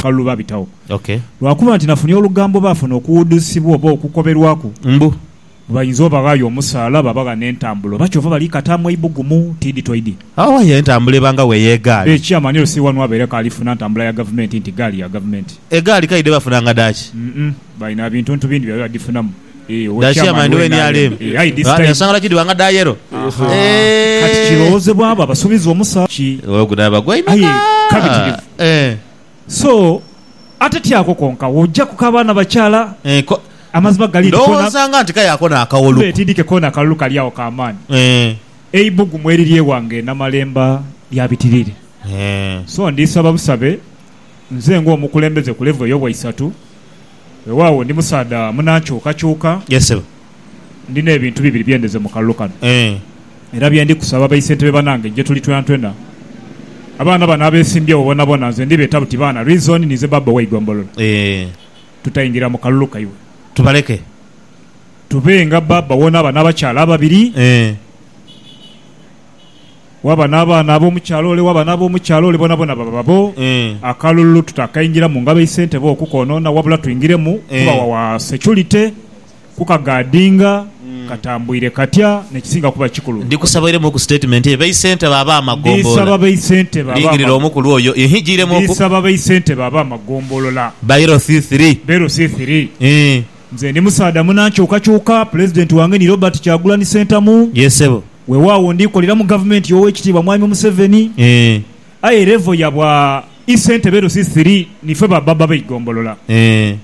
Kalulu babitagho. Okay. Lwa kuba nti nafunhi olugambo baafuna okuwudhusibwa oba okukoberwaku. Mbu. Bayinza obaghaayo omusaala, babagha n'entambula. Oba kyova bali kataamu eibugumu, tiidi toidi. Awa ye entambula eba nga we y'egaali. Ekyama ni Lcee wanu abeere k'alifuna ntambula ya gavumenti nti gaali ya gavumenti. Egaali kaidhe bafuna nga dhaaki? Umm, balina bintuntu bindi bye badhifunamu. Dha chairman we nrm Ghandi ensonga lwaki dhiwanga dha yellow Kati Eehh. kirowozebwa abo abasubiza omusa ki Olwo guno aba gwaimeka. Aye kabitirivu. Eeh. So ate ti ako konka wojaku ka baana bakyala Eeh ko amazima gali nti kona Ndowooza nga nti kaya ako nakawolu. Tube tidike kona akalulu kali agho ka maani. Eeh. Eibugumu eriri ewange e Namalemba lya bitirire. Eeh. So ndisaba busabe nze nga omukulembeze ku level eyo bwaisatu Weewaawo, ndi musaadha munankyukakyuka. Yes, ssebo. Ndi n'ebintu bibiri bye ndeze mu kalulu kano. Eeh. Era bye ndi kusaba baisentebe banange gye tuli twenatwena. Abaana bano abeesimbyewo bonabona nze ndibeeta buti baana Reason ninze baaba ow'eigombolola. Eeh. Tutaingira mu kalulu kaibwe. Tubaleke. Tube nga baaba w'onaaba n'abakyala ababiri. Eeh. Waba n'abaana ab'omu kyalo ole, waba n'ab'omu kyalo ole boonaboona baba babo. Akalulu tutakaingira mu ngabo eisente bo okukoonoona, wabula twingiremu kuba wawa securite, kukagadinga katambuire katya n'ekisinga kuba ekikulu. Ndikusaba oiremu ku sitatimenti eyo b'eisente bo ab'amagombolola. Ndisaba b'eisente bo Lingirira ab'amagombolola. omukulu oyo. Ihi giiremu oku. Ndisaba b'eisente bo ab'amagombolola. Bairo thithiri. Bairo thithiri. Ii. Nze ndi musaadha muna nkyukakyuka, Pulezidenti wange ni Robert Kyagulanhi Ssentamu. Ye sebo. Wewaawo ndi kolera mu gavumenti y'Owekitiibwa Mwami Museveni. Ee. Aye level ya bwa Isentebe Lusi Thiri ni fe ba Baba b'eigombolola. Ee.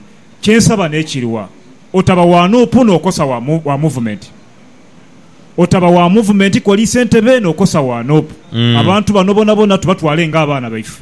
Kye nsaba n'ekiri wa otaba wa nup n'okosa wa mu wa muvumenti. Otaba wa muvumenti koli Isentebe n'okosa wa nup. Abantu bano bonabona tubatwale nga abaana baife.